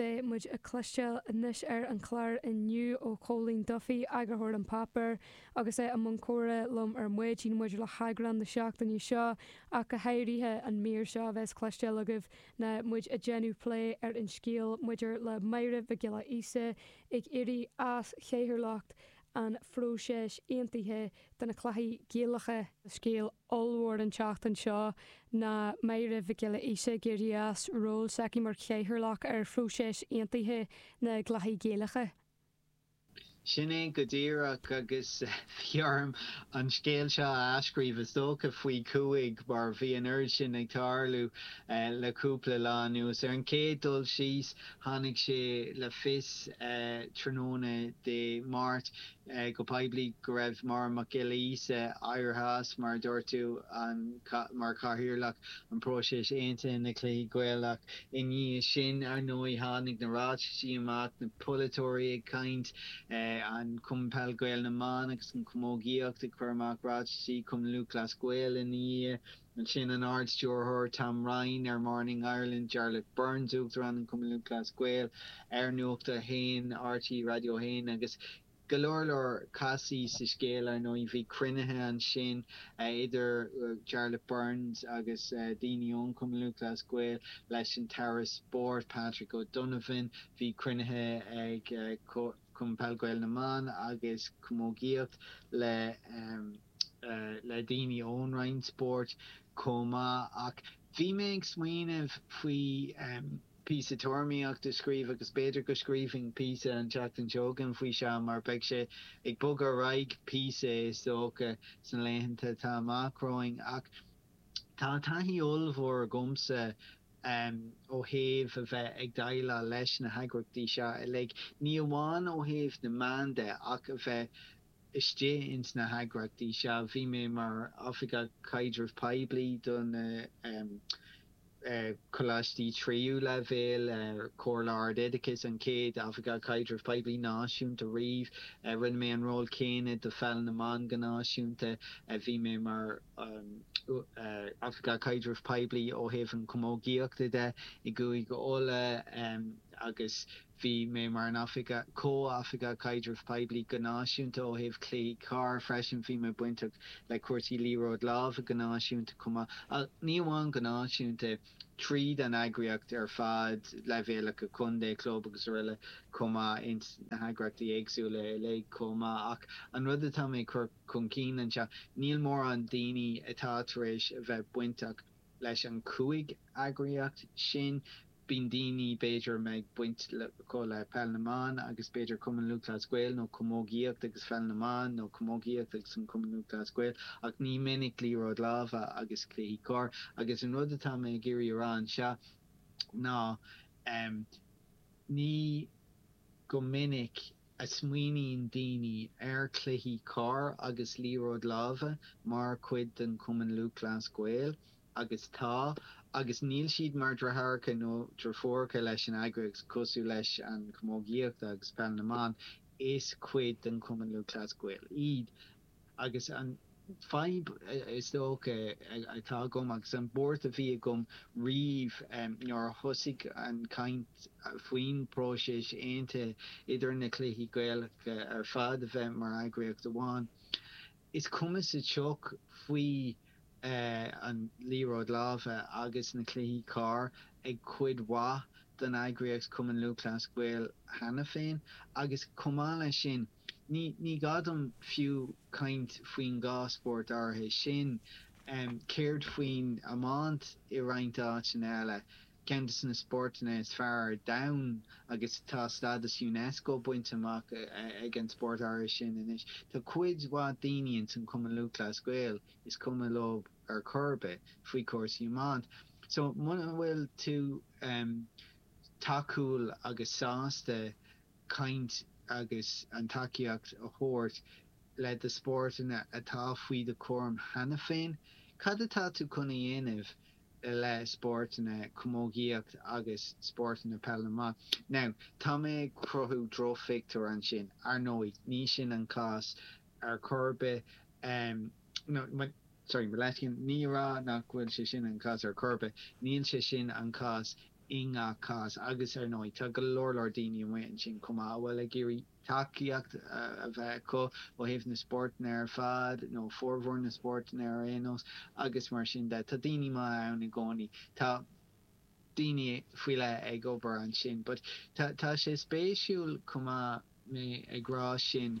Beidh muid ag cloisteáil anois ar an chlár inniu ó Chóilín Duffy, eagarthóir an Páipéir, agus é i mbun comhrá liom ar maidin maidir le heagrán na seachtaine seo, ach go háirithe an mír seo a bheas le cloisteáil agaibh ná muid ag déanamh plé ar an scéal maidir le Máire Mhic Giolla Íosa ag éirí as chathaoirleacht an phróiseas aontaithe do na cluichí Gaelacha. Scéal ollmhór an tseachtain seo ná Máire Mhic Giolla Íosa ag éirí as ról s'aici mar chathaoirleach ar phróiseas aontaithe na gcluichí Gaelacha. Sin é go díreach agus bhí orm an scéal seo a athscríobh, is dócha faoi chúig, mar bhí an oiread sin ag tarlú le cúpla lá anuas. Ar an chéad dul síos, Tháinig sé le fios tráthnóna Dé Máirt go poiblí go raibh Máire Mac Giolla Íosa éirithe as, mar a dúirt tú, mar chathaoirleach an phróisis aontaithe na Cluichí Gaelacha. I ndiaidh sin, ar ndóigh, tháinig na ráitisí amach, na polaiteoirí ag caint, Cumann Peil Gael na mBan agus an Chamógaíocht ag cur amach ráitisí, Cumann Lúthchleas Gael ina ndiaidh. Ansin an Ard-Stiúrthóir Tom Ryan ar Morning Ireland, Jarlath Burns, Uachtarán an Chumainn Lúthchleas Gael ar Nuacht a hAon, RTÉ Raidió 1 agus go leor leor castaí sa scéal, ar ndóigh. Bhí cruinnithe ansin idir Jarlath Burns agus daoine ón Chumann Lúthchleas Gael, leis an tAire Spóirt Patrick O'Donovan, bhí cruinnithe ag Cumann Peil Gael na mBan agus Camógaíocht le. le daoine ón Roinn Spóirt chomh maith ach bhí mé ag smaoineamh faoi phíosa tuairimíocht a scríobh agus b'fhéidir go scríobhfainn píosa an tseachtain seo chugainn faoi seo mar beidh sé ag bogadh ar aghaidh píosa is dócha sna laethanta atá amach romhainn ach tá taithí ollmhór agamsa ó thaobh a bheith ag déileáil leis na heagraíochtaí seo uilig, ní amháin ó thaobh na meán de ach a bheith. istigh ins na heagraíochtaí seo. Bhí mé mar Oifigeach Caidrimh Poiblí do na coláistí tríú leibhéal, Comhairle Ard-Oideachais, an chéad Oifigeach Caidrimh Poiblí náisiúnta riamh. Rinne mé an ról céanna do Pheil na mBan go náisiúnta. Bhí mé mar Oifigeach Caidrimh Poiblí ó thaobh an chamógaíocht de i gCúige Uladh agus Bhí mé mar an Oifigeach, Comh-Oifigeach Caidrimh Poiblí go náisiúnta ó thaobh Chluiche Corr freisin. Bhí mé bainteach le cúrsaí Liathróid Láimhe go náisiúnta chomh maith, ach ní amháin go náisiúnta, tríd an eagraíocht ar fad, leibhéalacha contae, club agus aroile chomh maith, ins na heagraíochtaí éagsúla uilig chomh maith. Ach an rud atá mé ag cur chun cinn anseo, níl mórán daoine atá tar éis a bheith bainteach, Leis an cúig eagraíocht sin, bíonn daoine, b'fhéidir, a mbeadh baint acu le Peil na mBan agus b'fhéidir Cumann Lúthchleas Gael, nó Camógaíocht agus Pheil na mBan, nó Camógaíocht agus an Cumann Lúthchleas Gael, ach ní minic Liathróid Láimhe agus Cluichí Corr. Agus an rud atá mé ag iarraidh a rá anseo ná, ní go minic, a smaoiníonn daoine ar cluichí corr agus liathróid láimhe mar chuid den Chumann Lúthchleas Gael, agus tá, agus níl siad mar dhriotháracha nó dhriofúracha leis an eagraíocht, cosúil leis an chamógaíocht agus peil na mban, is cuid den Chumann Lúthchleas Gael iad. agus an fadhb is dócha atá agam agus an bhuairt a bhí agam riamh nuair a thosaigh an chaint faoin próiseas aontaithe idir na cluichí Gaelacha ar fad a bheith mar eagraíocht amháin, is cuma sa tsioc faoi an liathróid láimhe agus na cluichí corr ag cuid mhaith den eagraíocht Cumann Lúthchleas Gael cheana féin agus chomh maith leis sin, Ní gá dom fiú caint faoin dá spórt áirithe sin. Céard faoin iomáint i roinnt áiteanna eile, ceann de na spórtanna is fearr ar domhan agus tá stádas Unesco bainte amach ag an spórt áirithe sin anois. Tá cuid mhaith daoine ins an Cumann Lúthchleas Gael is cuma leo ar chor ar bith faoi chúrsaí iomáint. So muna bhfuil tú tacúil agus sásta caint agus an tacaíocht a thabhairt le do spórtanna atá faoi do chúram cheana féin. Cad atá tú chun a dhéanamh le spórtanna, camógaíocht agus spórtanna peil na mban? Now, tá mé ag cruthú drochphictiúir ansin, ar ndóigh, ní sin an cás ar chor ar bith. sorry, mo leithscéal, ní a rá nach bhfuil sé sin an cás ar chor ar bith. Níl sé sin an cás i ngach cás agus, ar ndóigh, tá go leor leor daoine amuigh ansin chomh maith a bhfuil ag iarraidh tacaíocht a bheith acu ó thaobh na spórtanna ar fad, nó formhór na spórtanna ar aon nós, agus mar sin de. Tá daoine maithe ann i gcónaí. Tá daoine faoi leith ag obair ansin. But tá sé spéisiúil chomh maith mé ag rá sin.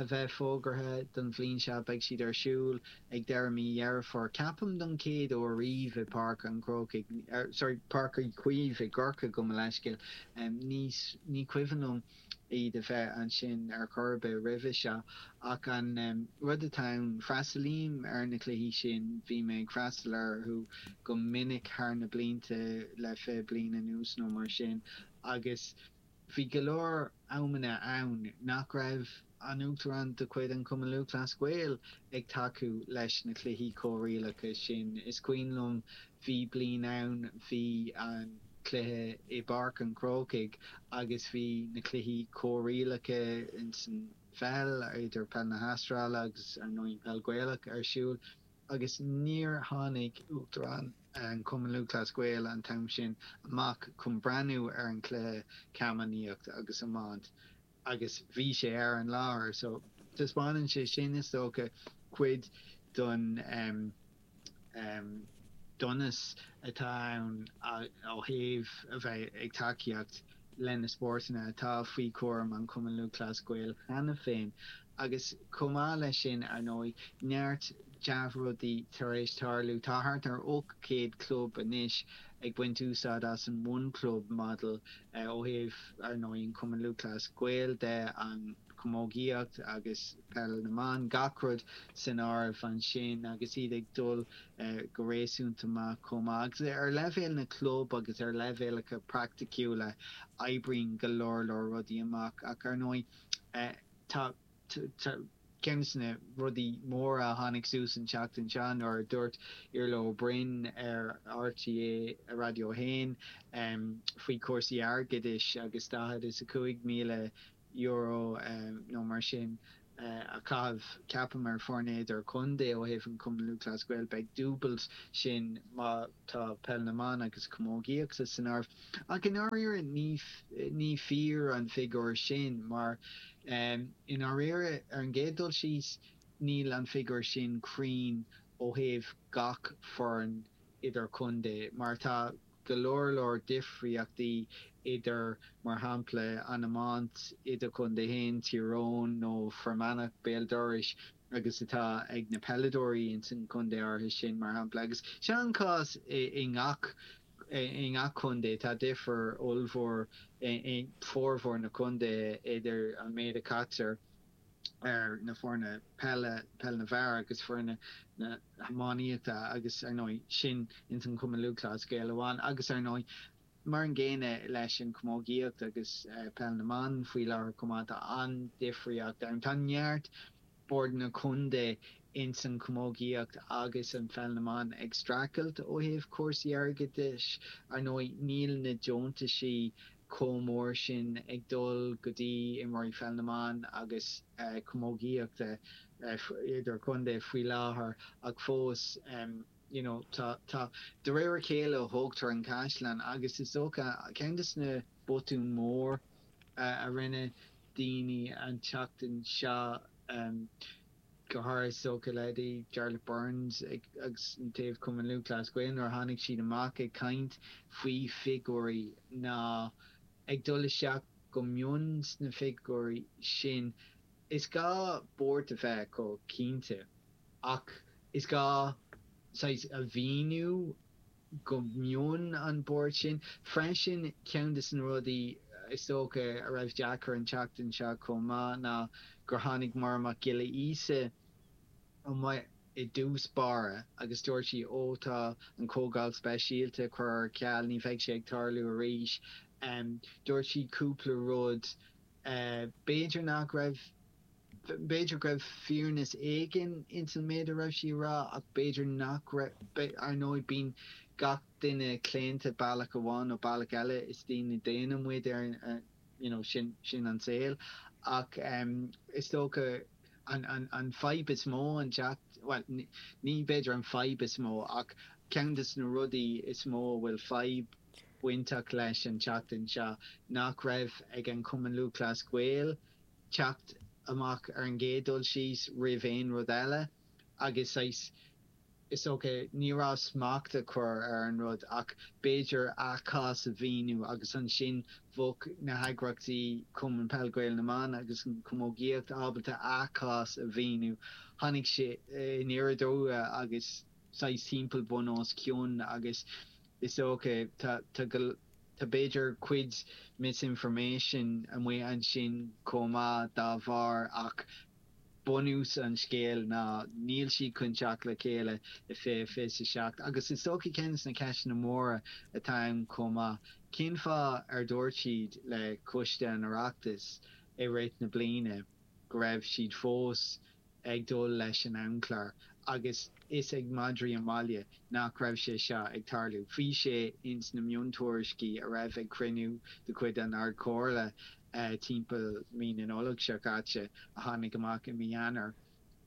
a bheith fógartha don bhliain seo. Beidh siad ar siúl ag deireadh mí Dheireadh Fómhair, ceapaim, don chéad uair riamh i Páirc an Chrócaigh, sorry, Páirc Uí Chaoimh i gCorcaigh, gabh mo leithscéal, ní, ní cuimhin liom iad a bheith ansin ar chor ar bith roimhe seo. Ach an rud atá ann, freastalaím ar na cluichí sin, bhí mé ag freastal orthu go minic thar na blianta, le fiche bliain anuas nó mar sin agus, Bhí go leor amanna ann nach raibh an tUachtarán de chuid an Chumainn Lúthchleas Gael ag tacú leis na cluichí comhrialacha sin. Is cuimhin liom, bhí bliain ann, bhí an cluiche i bPáirc an Chrócaigh agus bhí na cluichí comhrialacha insan pheil, idir peil na hAstráile agus, ar ndóigh, an peil Ghaelach ar siúl. agus níor tháinig Uachtarán an Chumainn Lúthchleas Gael an t-am sin amach chun breathnú ar an chluiche camánachta agus iomáint agus bhí sé ar an láthair so taispeánann sé sin, is dócha, cuid den donas atá ann ó thaobh a bheith ag tacaíocht leis na spórtanna atá faoi chúram an Chumainn Lúthchleas Gael cheana féin agus chomh maith leis sin, ar ndóigh, neart dea-rudaí tar éis tarlú. Tá thart ar 800 club anois ag baint úsáid as an One Club Model ó thaobh, ar ndóigh, an Cumann Lúthchleas Gael de, an chamógaíocht agus. peil na mban, gach rud san áireamh ansin agus iad ag dul go réasúnta maith chomh maith. Agus ar leibhéal na gclub agus ar leibhéalacha praiticiúla, oibríonn go leor leor rudaí amach ach, ar ndóigh, tá ceann des na rudaí móra a tháinig suas an tseachtain seo nuair a dúirt Iarla Ó Broin ar RTÉ Raidió a hAon faoi chúrsaí airgeadais agus daichead is a cúig míle euro nó mar sin a chaitheamh, ceapaim, ar foirne idirchontae ó thaobh an Cumann Lúthchleas Gael. Beidh dúbailt sin má tá Peil na mBan agus Camógaíochta san áireamh. Ach i ndáiríre ní fíor an figiúr sin mar i ndáiríre, ar an gcéad dul síos, níl an figiúr sin cruinn ó thaobh gach foireann idir-chontae mar tá go leor leor difríochtaí idir, mar shampla, an iomáint, idirchontae féin, Tír Eoghain, nó Fear Manach, béal dorais, agus atá ag na peileadóirí ins an chontae áirithe sin, mar shampla. Agus seo an cás i ngach, i ngach contae. Tá difear ollmhór i bhformhór na gcontaetha idir an méid a chaitear, ar na foirne peile, peil na bhfear agus foirne na hiománaíochta agus, ar ndóigh, sin ins an Chumann Lúthchleas Gael amháin agus, ar ndóigh, mar an gcéanna leis an Chamógaíocht agus Peil na mBan faoi láthair chomh maith. Tá an-difríocht ann. Tá neart Bord na Contae ins an Chamógaíocht agus an Pheil na mBan ag streachailt ó thaobh cúrsaí airgeadais. Ar ndóigh, níl na deontais chomh mór sin ag dul go dtí imirt Pheil na mBan agus Camógaíochta idir-chontae faoi láthair ach fós you know tá tá de réir a chéile a tógtar an caisleán agus is dócha ceann de na botúin mhóra a rinne daoine an tseachtain seo go háirithe is dócha le,, Jarlath Burns agus ó thaobh Cumann Lúthchleas Gael, nuair a tháinig siad amach ag caint faoi figúirí ná ag dul isteach go mion sna figúirí sin. Is gá buairt a bheith acu, cinnte, ach is gá saghas a mhíniú go mion an bhuairt sin. Freisin, ceann de na rudaí is dócha a raibh deacair an tseachtain seo chomh maith ná gur tháinig Máire Mac Giolla Íosa amach i dtús báire agus dúirt sí ó tá an Chomhdháil Speisialta curtha ar ceal, ní bheidh sé ag tarlú arís. Dúirt sí cúpla rud b'fhéidir nach raibh. B'fhéidir go raibh fírinne éigin ins an méid a raibh sí a rá ach b'fhéidir, ar ndóigh, bíonn gach duine claonta bealach amháin nó bealach eile, is daoine daonna muid, ar you know, sin, sin an saol. Ach is dócha an, an, an fadhb is mó, an teacht, bhuel, ní b'fhéidir an fadhb is mó ach ceann de na rudaí is mó a bhfuil fadhb bainteach leis an tseachtain seo nach raibh ag an gCumann Lúthchleas Gael teacht amach ar an gcéad dul síos, roimh aon rud eile, agus saghas, is dócha, ní déarfainn smacht a chur ar an rud, ach b'fhéidir a gcás a mhíniú, agus ansin bheadh na heagraíochtaí, Cumann Peil Gael na mBan agus an Chamógaíocht, ábalta a gcás a mhíniú. Tháinig sé aniar aduaidh agus saghas timpeall bun os cionn, agus Is dócha, tá, tá go, tá b'fhéidir cuid misinformation amuigh ansin chomh maith dá bharr ach bunús an scéil ná níl siad chun teacht le chéile i fiche fiche a seacht agus is dócha ceann de na ceisteanna móra atá ann chomh maith, cén fáth ar dhúirt siad le Coiste an Oireachtais i rith na bliana go raibh siad fós ag dul leis an amchlár agus a fhios ag madraí an bhaile nach raibh sé seo ag tarlú. Bhí sé ins na miontuairiscí a raibh ag cruinniú de chuid an Ardchomhairle timpeall mí na Nollag seo caite, a tháinig amach i mí Eanáir,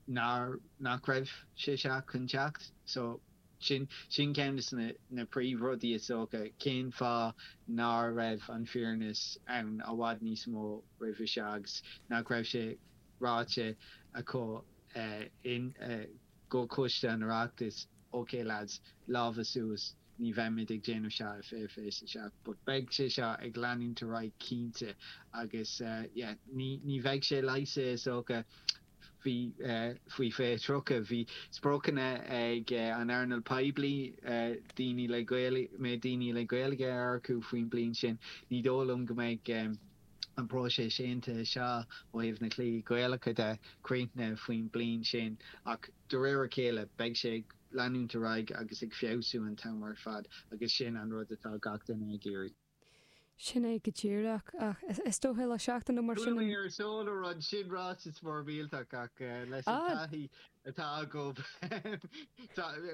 nach raibh sé seo chun teacht. So, sin sin ceann de na príomhrudaí is dócha, cén fáth nár raibh an fhírinne ann i bhfad níos mó roimhe seo agus nach raibh sé, ráite acu i gComhchoiste an Oireachtais, OK lads, lámha suas, ní bheimid ag déanamh seo i fiche fiche a 7 but beidh sé seo ag leanúint ar aghaidh cinnte agus yeah ní ní bheidh sé leigheasta is dócha bhí faoi fiche 30, bhí spriocanna ag an earnáil poiblí daoine le Gaeilge, mbeidh daoine le Gaeilge a earcú faoin bliain sin, ní dóigh liom go mbeidh. an próiseas aontaithe seo ó thaobh na gcluichí Gaelacha de críochnaithe faoin bliain sin ach de réir a chéile beidh sé ag leanúint ar aghaidh agus ag feabhsú an t-am ar fad agus sin an rud atá gach duine ag iarraidh. Sin é go díreach ach is dóiche le seachtain nó mar sin. Sin ráiteas mór millteach ach leis an taithí atá agam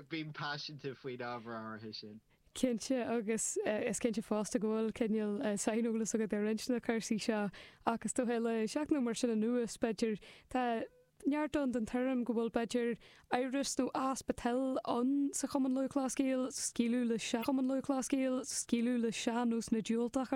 bím paiseanta faoin ábhar áirithe sin. cinnte agus is cinnte fosta go bhfuil cineál saineolas agat ar roinnt de na cúrsaí seo ach is dócha le seachtain nó mar sin anuas, b'fhéidir, tá neart ann den tuairim go bhfuil, b'fhéidir, amhras nó easpa toil ann sa Chumann Lúthchleas Gael scaoileadh le sócmhainní nó diúltú ar.